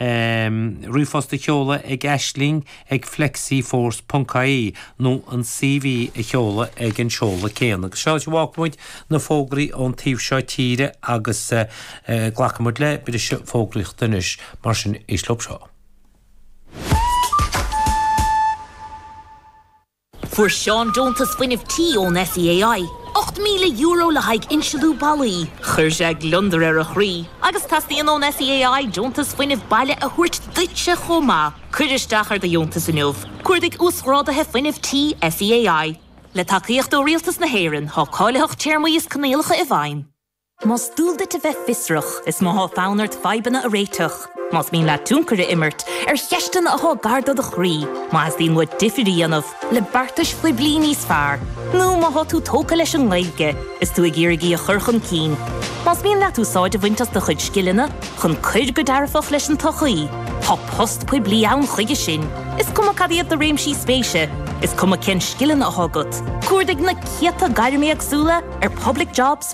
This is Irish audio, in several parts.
Ríomhphost a sheoladh ag Aisling ag FlexiForce.ie nó an CV a sheoladh ag an seoladh céanna. Agus seo é a bhfágfaidh muid na fógraí ón taobh seo tíre agus glacfaidh muid le briseadh fógraíochta anois, mar sin is leo seo. Fuair Seán deontas fuinnimh tí ón SEAI, €8,000 le haghaidh insliú ballaí. Chuir sé gliondar ar a chroí agus teastaíonn ón SEAI deontas fuinnimh baile a thabhairt duitse chomh maith. Cuir isteach ar do dheontas inniu. Cuardaigh Uasghrádaithe Fuinnimh Tí SEAI. Le tacaíocht ó Rialtas na hÉireann, tá cáilitheacht téarmaí is coinníollacha i bhfeidhm. Más dual duit a bheith fiosrach, is má tá fonn ort fadhbanna a réiteach. Más mian leat tionchar a imirt ar cheisteanna atá gar do do chroí, má theastaíonn uait difear a dhéanamh le beartais phoiblí níos fearr, nó má tá tú tógtha leis an nGaeilge is tú ag iarraidh í a chur chun cinn, más mian leat úsáid a bhaint as do chuid scileanna chun cuir go dearfach leis an tsochaí, tá post poiblí ann chuige sin, is cuma cad iad do réimsí spéise, is cuma cén scileanna atá agat. Cuardaigh na céadta gairm éagsúla ar Public Jobs.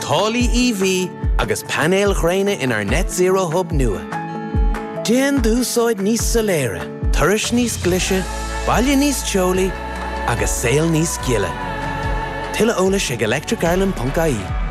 Taraifí EV agus painéil ghréine inár Net Zero Hub nua. Déan d'úsáid níos soiléire, turais níos glise, baile níos teolaí agus saol níos gile. Tuilleadh eolais ag electricireland.ie.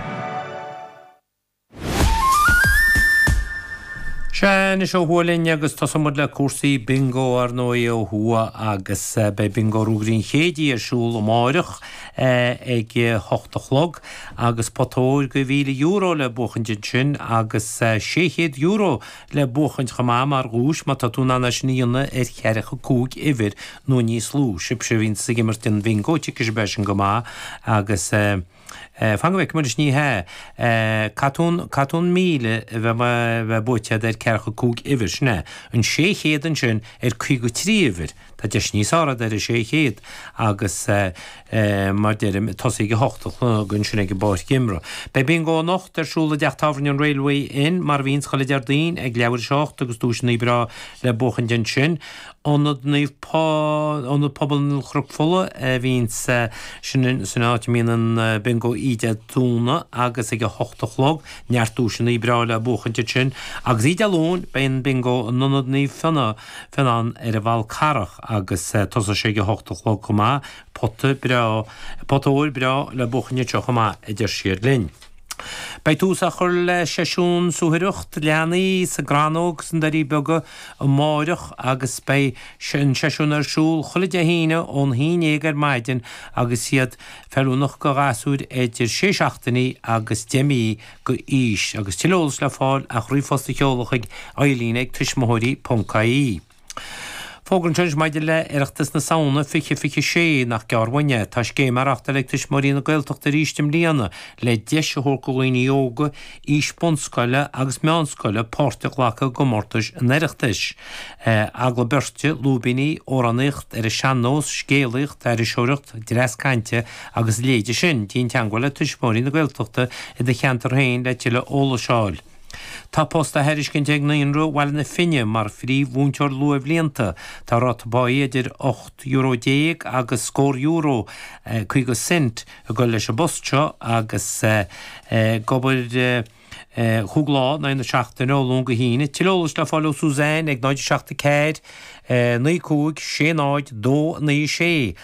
Sea, anois ó thuaidh linn agus tosóidh muid le cúrsaí bingo ar ndóigh ó thuaidh agus eh, beidh bingo Naomh Muire an Chéididh ar siúl amáireach eh, ag a hocht a chlog. agus pota óir de €1,000 le buachaint ansin agus €600 le buachaint chomh maith mar dhuais má tá tú in ann é sin a dhéanamh ar cheathracha cúig uimhir nó níos lú. Sibhse a bhíonns ag imirt an bhingo, tuigfidh sibh é sin go maith agus fan go bhfeicfidh muid, ní hea, caithfidh tú an, caithfidh tú an míle a bheith, a bheith buaite agat ar ceathracha cúig uimhir, sin é, an sé chéad ansin ar caoga trí uimhir. Tá deis níos airde ar an 600 agus mar deirim, ag tosaí ag a hocht a chlog ansin ag an bPáirc Imeartha. Beidh Bingo anocht ar siúl i dTeach Tábhairne an Railway Inn, mar a bhíonns chuile Deardaoin, ag leathuair a seacht agus duaiseanna breá le buachaint ansin. Ionad Pobail Chnoc Fola a bhíonns, sin an áit a mbíonn an Bingo oíche Dé Domhnaigh agus ag a hocht a chlog, neart duaiseanna breá le buachaint ansin. Agus Oíche Dé Luain, beidh an Bingo in Ionad Naomh Fionnán ar an bhFál Carrach agus tosóidh sé ag a hocht a chlog chomh maith, pota breá, pota óir breá le buachaint anseo chomh maith, a deir siad linn. Beidh tús á chur le seisiún suathaireacht leanaí sa gCrannóg sna Doirí Beaga amáireach agus beidh an seisiún ar siúl chuile Dé hAoine ón haon éag ar maidin agus iad feiliúnach do ghasúir idir sé seachtainí agus deich mí aois, agus tuilleadh eolais le fáil ach ríomhphost a sheoladh chuig Eileen ag, tuismitheoirí.ie. Fógra anois maidir le Oireachtas na Samhna 2026 nach gearr uainn é. Tá scéim á reáchtáil ag Tuismitheoirí na Gaeltachta arís i mbliana le deis a thabhairt do dhaoine óga, aois bunscoile agus meánscoile, páirt a ghlacadh i gcomórtais an Oireachtais. Agallamh beirte, lúibíní, amhránaíocht ar an sean-nós, scéalaíocht, aithriseoireacht, dreas cainte agus a leithéid sin, déan teagmháil le Tuismitheoirí na Gaeltachta i do cheantar féin le tuilleadh eolais a fháil. Tá post á thairiscint ag Naíonra Bhaile na Finne mar phríomh-mhúinteoir luathbhlianta. Tá ráta páí idir ocht euro déag agus scór euro, caoga cent, ag dul leis an bpost seo agus ag obair chúig lá in aghaidh na seachtaine, ó Luan go hAoine. Tuilleadh eolais le fáil ó Suzanne ag 074 95 60 296.